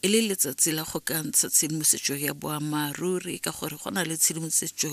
e le letsatsi la go ka ntsha tshedimosetso ya boammaaruri ka gore go na le tshedimosetso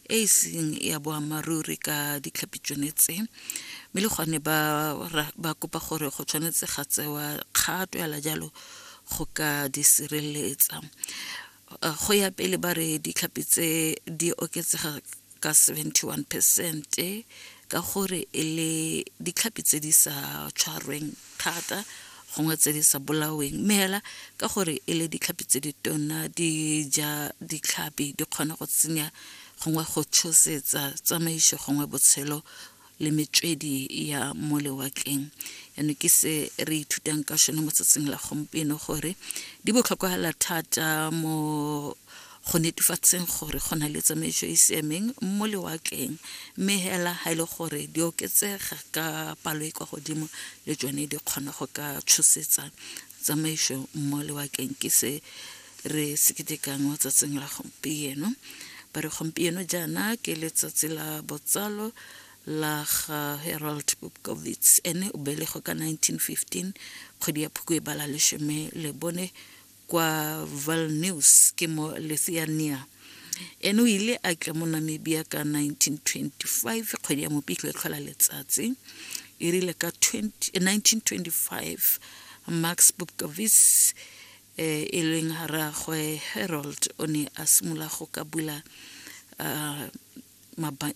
e e seng ya boammaaruri ka ditlhapi tsone tse mme le gone ba ba kopa gore go tshwanetse ga tsewa kgato yala jalo go ka di sireletsa go ya pele ba re ditlhapi tse di oketsega ka 71 percent ka gore e le ditlhapi tse di sa tshwarweng thata gongwe tse di sa bolaweng mme hela ka gore e le ditlhapi tse di tona di ja ditlhapi di kgona go tsenya gongwe go tshosetsa tsamaiso gongwe botshelo le metswedi ya mo lewatleng yano ke se re ithutang ka sone mo tsatsing la gompieno gore di botlhokwa hela thata mo go netefatseng gore go na le tsamaiso e siameng mo lewatleng mme hela ga e le gore di oketsega ka palo e kwa godimo le tsone di kgona go ka tshosetsa tsamaiso mo lewatleng ke se re se ketekang mo tsatsing la gompieno ba re gompieno jaana ke letsatsi la botsalo la ga Harold Bobkovitz ene o belego ka 1915 kgwedi ya phukwe bala leshome le bone kwa Vilnius ke mo Lithuania ene o ile a tla mo Namibia ka 1925 kgwedi ya mopitlo e tlhola letsatsi e rile ka 1925 Max Bobkovitz e e leng rraagwe Harold o ne a simolola go ka bula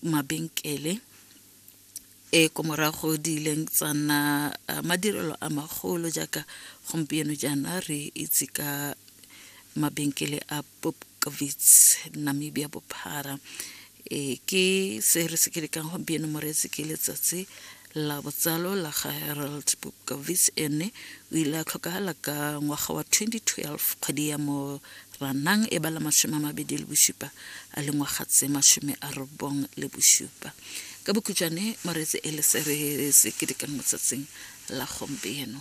mabenkele e ko morago di ileng tsa nna madirelo a magolo jaaka gompieno jaana re itse ka mabenkele a Bobkovits, Namibia bophara. E ke se re se ke lekang gompieno moreetsi ke letsatsi la botsalo la ga Harold Bobkovits ene o ile a tlhokagala ka ngwaga wa 2012 kgwedi ya Moranang e bala masome a mabedi le bosupa a le ngwaga tse masome a robong le bosupa ka bokhutšwane moreetse e le se re se ke lekang motsatsing la gompieno